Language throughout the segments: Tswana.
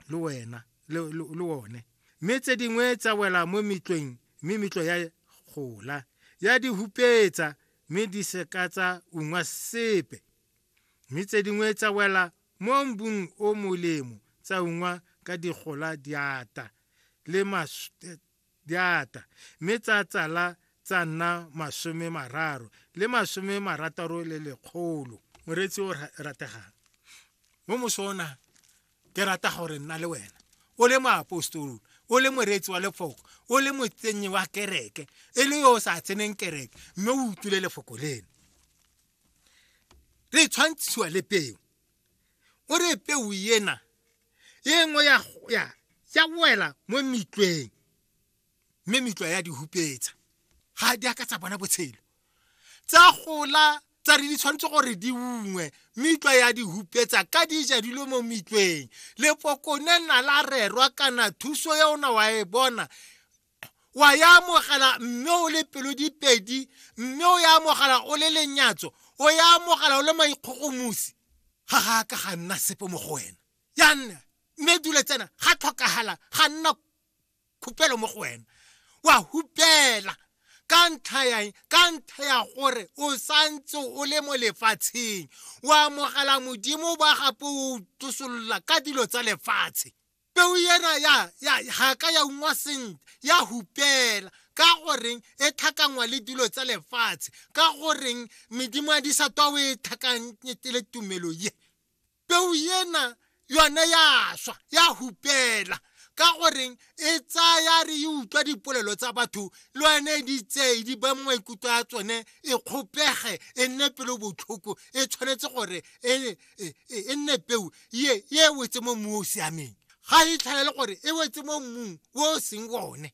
le wena le, le, le one mme tse dingwe tsa wela mo metlweng mme metlo ya gola ya di hupetsa mme di seka tsa ungwa sepe mme tse dingwe tsa wela mo mbung o molemo tsa ungwa ka digola diata le mas, di ata mme tsa tsala tsa nna masome mararo le masome marataro le lekgolo moreetsi o rategang mo mosona ke rata gore nna le wena o le moapostolo o le moreetsi wa lefoko o le motsenyi wa kereke e le yo o sa tseneng kereke mme o utlwile lefoko leno re tshwantshiwa le peo o re peo ena e nngwe ya ya ya wela mo mitlweng mme mitlwa ya di hupetsa ga di a ka tsa bona botshelo tsa gola tsa re di tshwanetse gore di ungwe mitlwa ya di hupetsa ka di ja dilo mo mitlweng lepokone na la rerwa kana thuso ya ona wa e bona wa ya amogela mme o le pelo dipedi mme o ya amogela o le lenyatso o ya amogela o le maikgogomosi ga ga ka ga nna sepe mo go wena ya nna mme dule tsena ga tlhokagala ga nna khupelo mo go wena wa hupela ka ntlha ya ka ntlha ya gore o santse o le mo lefatsheng o amogela modimo ba gape o tosolola ka dilo tsa lefatshe peo ena ya ya ga ka ya ungwa sentle ya hupela ka goreng e tlhakangwa le dilo tsa lefatshe ka goreng medimo ya disatwa o e tlhakanyete le tumelo ye peo ena yone ya swa ya hupela ka goreng e tsaya re e utlwa dipolelo tsa batho le yone e di tseye di ba maikutlo a tsone e kgopege e nne pelo botlhoko e tshwanetse gore e e, e, e nne peu ye e wetse mo mmu o o siameng ga e tlhaele gore e wetse mo mmung o o seng one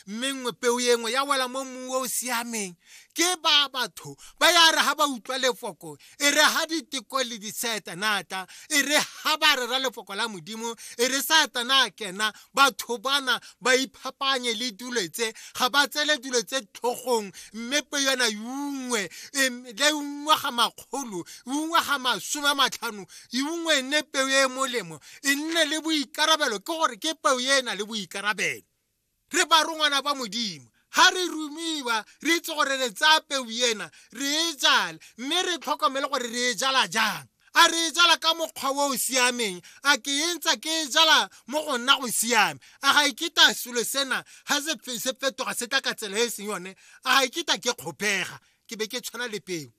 mme nngwe peo e nngwe ya wela mo mmung o o siameng ke ba batho ba ya re ga ba utlwa lefoko e re ga diteko le disaetanata e re ga ba rera lefoko la modimo e re saetana a kena batho bana ba iphapanye le dilo tse ga ba tsele dilo tse tlhogong mme pe yona yungwe le ungwe ga makgolo ungwe ga masome a matlhano ungwe e nne peo e e molemo e nne le boikarabelo ke gore ke peo e e na le boikarabelo re ba rongwana ba modimo ga re rumiwa re itse gore re tsaya peu ena re e jale mme re tlhokomele gore re e jala jang a re e jala ka mokgwa o o siameng a ke e ntsa ke e jala mo go nna go siame a ga iketa e selo sena ga se fetoga se tla ka tsela e e seng yone a ga iketa e ke kgopega ke be ke tshwana le peo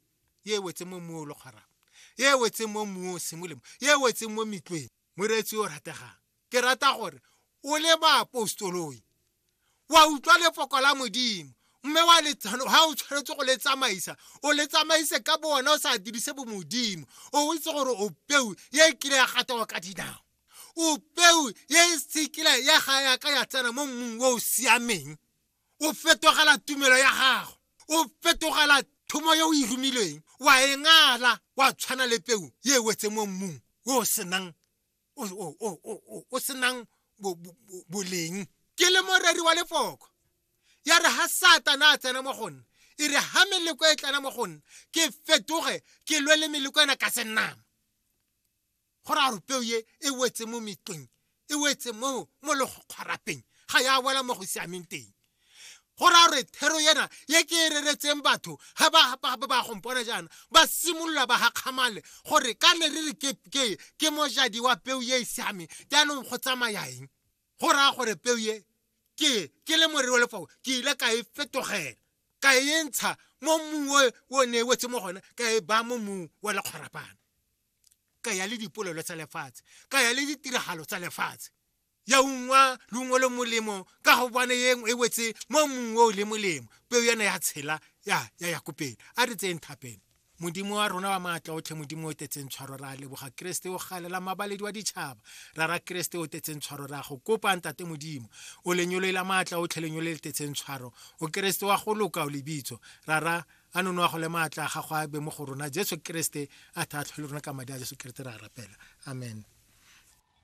e wetse mo mmu o le kgwarang e wetseng mo mmung o sengwe le mo e wetseng mo metlweng moreetsi o rategang ke rata gore o le baapostoloi wa utlwa lefoko la modimo mme wa le ha o tshwanetse go le tsamaisa o le tsamaise ka bo wena o sa dirise bo modimo o itse gore o peu ye e kile ya gatawa ka dinao o peu ye e sekile ya ga yaka ya tsena mo mmung o o siameng o fetogela tumelo ya gago o fetogela thomo yo o e romilweng wa e ngala wa tshwana le peu ye e wetse mo mmung o senang o senang boleng ke le moreri wa lefoko ya re ha satana a tsena mo go nna e re ha meleko e tlana mo go nna ke fetoge ke lwe le meleko ena ka senama go raya gore peo ye e wetse mo metleng e wetse mo mo le go kgwarapeng ga ya wela mo go siameng teng go raya gore thero yena ye ke e reretseng batho ga ba ba gompona jaana ba simolola ba gakgamale gore ka ne re re ke ke ke mojadi wa peo ye e siameng jaanong go tsamaya eng go raya gore peo ye ke ke le morero wa lefao ke ile ka e fetogela ka e ntsha mo mmung o ne e wetse mo gone ka e baya mo mmung wa lekgwarapana ka ya le dipolelo tsa lefatshe ka ya le ditiragalo tsa lefatshe ya ungwa leungo le molemo ka go bone yeng e wetse mo mongwe o le molemo peo yana ya tshela ya ya ya kopela a re tseng thapelo modimo wa rona wa maatla otlhe modimo o tetseng tshwaro ra leboga keresete o galela mabaledi wa ditšhaba ra ra keresete o tetseng tshwaro ra go kopa ntate modimo o lenyoloe la maatla otlhe lenyolo le tetseng tshwaro o keresete wa go loka o lebitso ra ra a nono a gole maatla a gago a be mo go rona jesu keresete a tlhatlhwe le rona ka madi a jesu keresete re a rapela amen